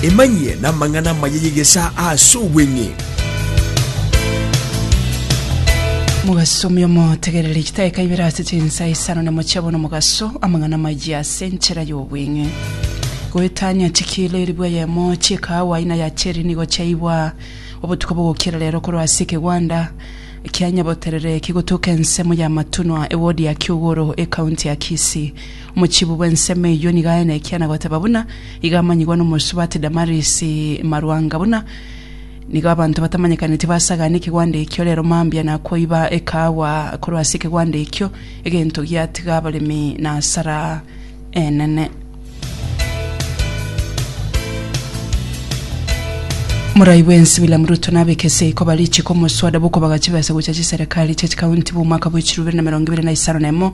Emanyie namang'ana amaya y'egesaa ase obweng'e. Mogasomie omotegereri chidaeka ibere ase chinsa isano na mochie abone omogaso amang'ana amaya ase enchera y'obweng'e. Goetania chikilo eribwa eyemo chi'ekaawa aina ya cherry nigo chiaiywa obotuko bogokira rero korwa ase ekegwanda kia Nyaboterere kigotuka ensemo ya Matunwa ewodi ya Kiugoro, ekaunti ya Kisii. Mochibi bw'ensemo eyio nigo aye nekiana goteba buna igo amanyigwa n'omosubati Damarisi Marwanga buna nigo abanto batamanyekaneti basagane ekegwanda ekio rero mambia nakoiba ekahawa korwa ase ekegwanda ekio egento giatiga abaremi na asara enene. Morai bwensi William Ruto nabeke seiko barichi komoswada bokobagacha chibesa gocha chiserekari chia chikaunti bwa omwaka bwa echiru bibere na emerongo ebere na isano na emo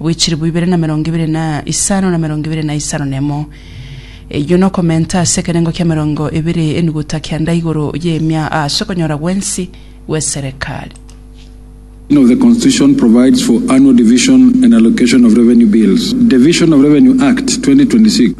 bwe chilifu ibere na emerongo ebere na isano na emerongo ebere na isano na emo, eyio nokomenta ase ekenengo ki'emerongo ebere enuguta kenda igoro y'emia ase okonyora gwensi gw'eserekari. of the Constitution provides for annual division and allocation of revenue bills, Division of Revenue Act, 2026.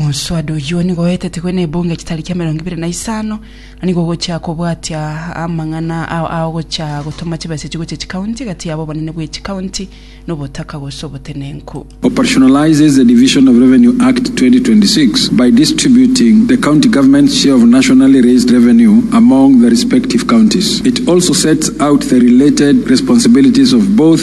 Omoswaada oyio nigo oetetigwe nebunge chitariki emerongo ebere na isano, na nigo ogochia kobwatia amang'ana ao agochia gotoma chibesa echio gochia chikaunti egati yabo obonene bwe chikaunti na obotaka gose obotenenku. Operationalizes the Division of Revenue Act 2026 by distributing the County Government's share of nationally raised revenue among the respective counties. It also sets out the related responsibilities of both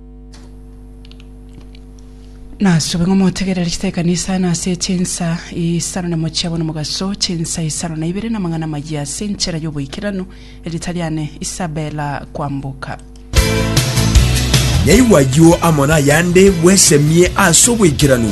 Nasube ng'a motegerere chitaba ekanisa na ase chinsa isano na mochie abwo nomogaso, chinsa isano na ibere namang'ana amayia ase enchera y'oboikeranu, erieta riane Isabella Kwamboka. Naigwa ayio amo nayande bwesemie ase oboikeranu.